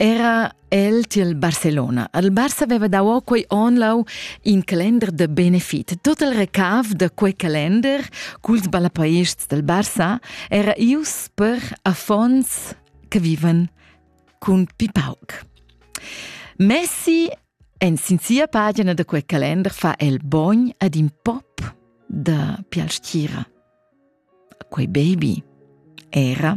era el tiel Barcelona. Al Barça aveva dau o quei on lau in calender de benefit. Tot il recav de quei calender culs ballapaists del Barça era ius per affons che vivan cun pipauc. Messi en sin sia pagina de quei calender fa el bogn ad in pop de Pialstiera. Quei baby era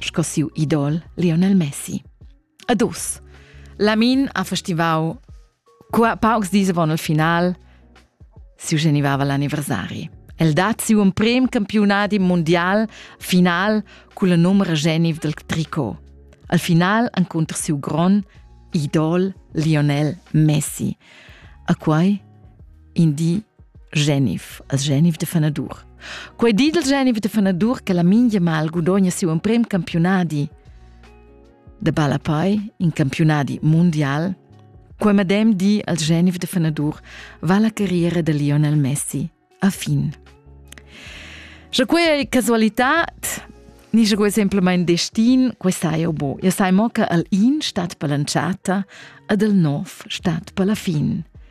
sco siu idol Lionel Messi. Ad us. Lamin ha festivau qua paucs dis avon il final siu genivava l'anniversari. El dat siu emprem campiunadi mondial final cun la numera geniv del tricot. Al final encunter siu gron idol Lionel Messi. A quai in di Genif, as Genif de Fanadur. Quei di del Genif de Fanadur che la mingia mal gudogna siu emprem campionadi de Balapai, in campionadi mondial, quei medem di als Genif de Fanadur va la carriera de Lionel Messi a fin. Sche quei ei casualitat, ni sche quei semplamein destin, quei sai jau bo. Ja sai mo che al in stat per l'entschatta ad el nov stat per la fin.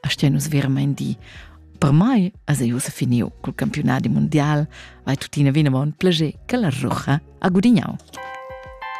a stian nus veramain di. Per mai as ei ussa finiu cul campiunadi mundial, vai tuttina vinavon plager che la rucha ha gudignau.